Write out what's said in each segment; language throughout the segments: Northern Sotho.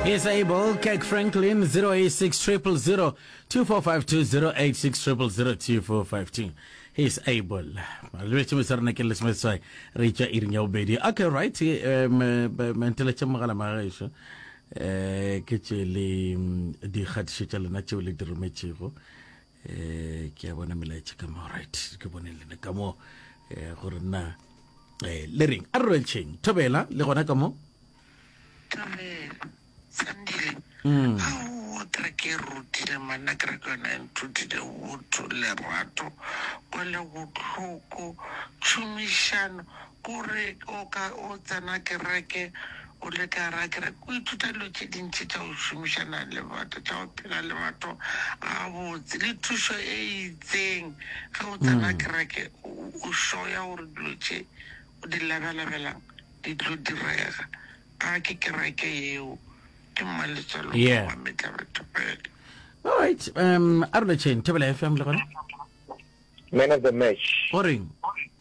Is able, Kirk Franklin, 086 000 2452, 086 000 2452. He is able. Malwetši mo tsarana ke lesome seswai re itša iring ya bobedi. Okay, right. eh, me- be- me nteletše mogala magaešo. Eh, ke tše le mm, dikgatišo tša lena tšeo le di rometšego. eh ke a bona melaetša ka mo right ke bone lena ka mo eh gore nna eh le reng a re tšheng thobela le gona ka mo thobela sandile mm. ha o tra ke rutile manna ke re ke yona e nthutile botho lerato kwele botlhoko tšhomišano O re o ka o tsena kereke, o le ka gara kereke, o ithuta dilo tše dintši tša go šomišana le batho, tša go phela le batho gabotse, le thušo e itseng. Ge o tsena kereke, o sure ya gore dilo tše o di labalabelang di tlo direga. A ke kereke yeo, ke mmaletswalo, ke mametla batho fela. Alright, um, a re lotšheng, Thobela FM le gona. Man of the match. O reng?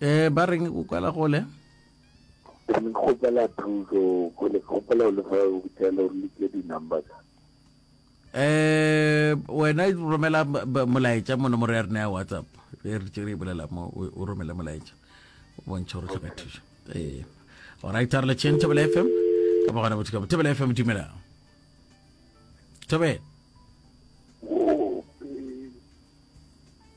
eh ba reng o kwala gole ke ne ke kgopela thuso go le kgopela le fa o tshela o le ke di number tsa eh wena romela molaetša mo nomoro ya rena ya whatsapp re re tšere e bolela mo o romele molaetša bontšha gore tlhoka thuso ee orit a re le tšheng thobela fm ka ba gona bothekamo thobela fm dumela thobela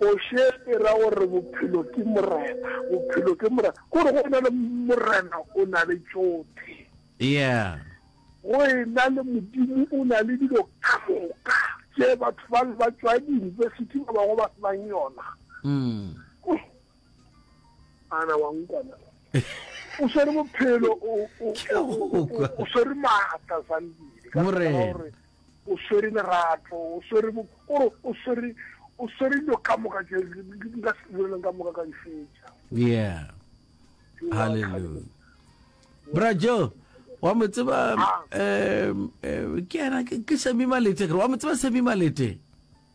Kgoši e ra gore bophelo ke morena, bophelo ke morena. Gore go ena le morena o na le tšothe. Yeah. Go ena le Modimo o na le dilo ka moka tše batho ba ba tšwa diyunibesithi ba bangwe ba se nang yona. Ana wa nkwana. O swere bophelo, o swere maatla Zandile. Morena. O swere lerato, o swere bo, o re, o swere, o swere dilo ka moka tše di di di ka se boleleng ka moka ka di fetša. yeah Ewa, hallelujah bra joe wa mo tseba Ah. um, eh, ke yena ke ke semi malete kere wa mo tseba semi malete